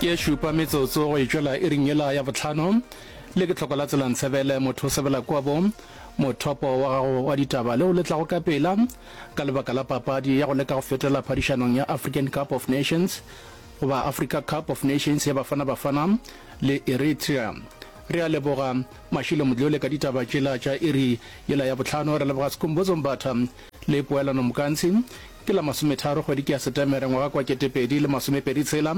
ke e šupa metsotso go e tšwela e ringela ya botlhano le ke tlhoko la tselantshebele motho o sebela kwabo mothopo wa gago wa ditaba le o letlago ka pela ka lebaka la papadi ya go leka go fetela phadišanong ya african cup of nations goba africa cup of nations ya bafana bafana le eritrea re a leboga mašilo modlole ka ditaba tšela tša iri yela ya botlhano re leboga sekombotsombatha le poelano mokantshi Ke la masometharo kgwedi ke ya Setemere ngwaga kwa ketepedi le masomepedi tshela.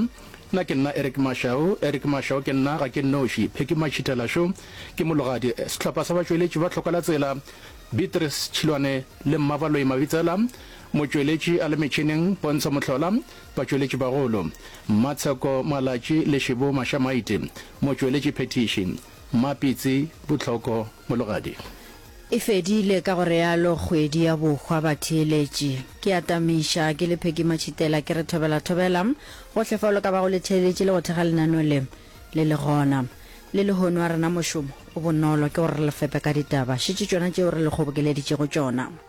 Na ke nna Eric Mashau? Eric Mashau ke nna, ga ke nnoši. Phecky Matšhitela Šo ke mologadi. Sehlopha sa batšweletši ba Tlhoka la Tsela, Beatrice Tšhilwane le Mmabaloi Mabitsela. Motšweletši a le metšhineng, Pontsho Mohlola. Batšweletši bagolo, Mmatsheko Malatši le Shibo Mashamaiti. Motšweletši phethiši, Mmapitsi Botlhoko. Mologadi. E fedile, ka go realo kgwedi ya bohwa batheeletši. Ke atamiša, ke le Peggy Matšhitela, ke re thobela, thobela, gohle fao le ka bago le theeletše le go thekga lenaneo le, le le gona. Le lehono a rena mošomo o bonolo ke gore re le fepe ka ditaba, šetše tšona tšeo re le kgobokeleditšego tšona.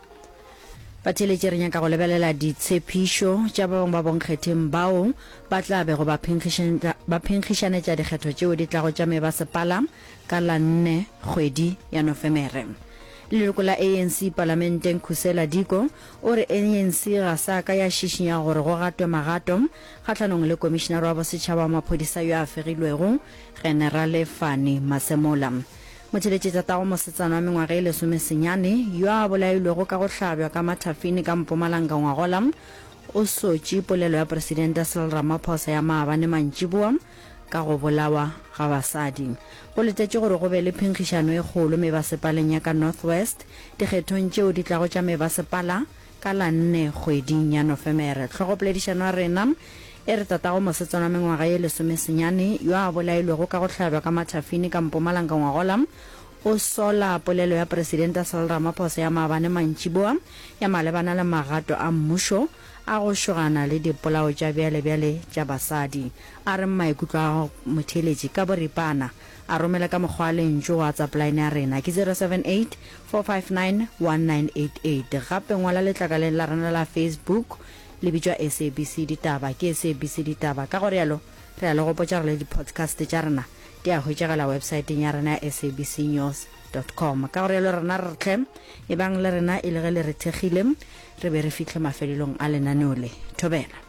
Batheeletše re nyaka go lebelela ditshepišo tša ba bangwe ba bonkgetheng bao ba tla bego ba phenkgišanetša dikgetho tšeo di tlago tša mebasepala ka la nne kgwedi ya Nofemere. Leloko la ANC palamenteng Khusela Diko o re ANC ga sa ka ya šišinya gore go gatwe magato kgahlanong le komišinara wa bosetšhaba wa maphodisa yo a fegilwego, Generale Fannie Masemola. Motšheletši tatago mosetsana wa mengwaga e lesomesenyane yo a bolailwego ka go hlabjwa ka mathafini ka Mpumalanga ngwagola o sotši polelo ya Presidente Cyril Ramaphosa ya maabane mantšiboa ka go bolawa ga basadi. Go letetšwe gore go be le phenkgišano e kgolo mebasepaleng ya ka North West dikgethong tšeo di tlago tša mebasepala Ka la nne kgweding ya Nofemere, hlogopoledišano ya rena e re tatago mosetsana wa mengwaga ye lesomesenyane yo a bolailwego ka go hlabjwa ka mathafini ka Mpumalanga ngwagola o sola polelo ya Presidente Cyril Ramaphosa ya maabane mantšiboa ya malebana le magato a mmušo a go šogana le dipolao tša bjalebjale tša basadi. A re maikutlo a motheeletši ka boripana a romele ka mokgwa wa lentšu go WhatsApp line ya rena ke 078 4591988 Gape ngwala letlakaleng la rena la Facebook, le bitšwa SABC Ditaba. Ke SABC Ditaba. Ka go realo, re a le gopotša gore le di-podcast tša rena di a hwetšagala websaeteng ya rena ya sabcnews dot com. Ka go realo rena re re tlhe, ebang le rena e le ge le re thekgile, re be re fihle mafelelong a lenaneo le. Thobela.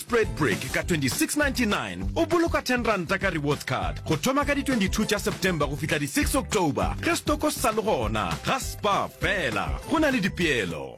Spread Brick ka 2699 o boloka 10 ranta ka Rewards Card go thoma ka di 22 tša September go fihla di 6 October ge stoko se sa le gona ga Spar fela. Go na le dipeelo.